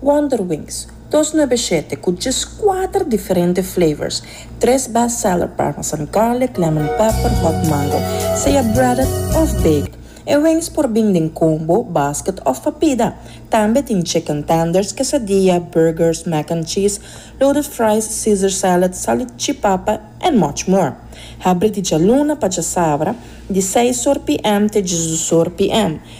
Wonderwings, dos nuebe shete cu djes cuater diferente flavors, tres best seller parmesan garlic, lemon pepper, hot mango, sea breaded of baked. E wings por bin den combo, basket of papida. Tambe tin chicken tenders, quesadilla, burgers, mac and cheese, loaded fries, caesar salad, salchipapa and much more. Habri di djaluna pa djasabra, di seis or PM te djesdusor PM.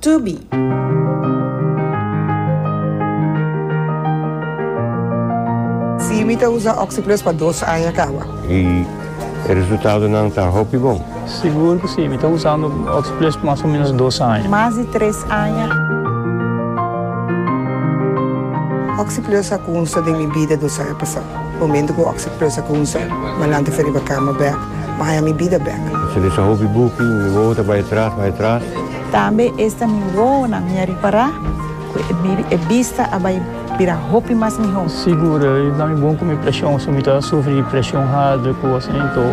Tubi! Sí, mi ta usa Oxi-Plus pa dos aña kawa. I e resultadonan ta hopi bon. Sigur ku sí, mi ta usando Oxi-Plus pa mas o ménos dos aña. Mas di tres aña. Oxi-Plus a kunsa den mi bida dos aña pasá. Momento cu oc sa presa cu un ser, malanta fe riba cama bek, Maya mi bida bek. Sa desa hopi buki, mi wowo ta bay atras, bay atras. Tambe esta mi wowonan mi a ripara cu e bista a bay bira hopi mas miho. Sigur, e ta mi bon cu mi presion, si mi ta sufri di presion harder cu asina, enton.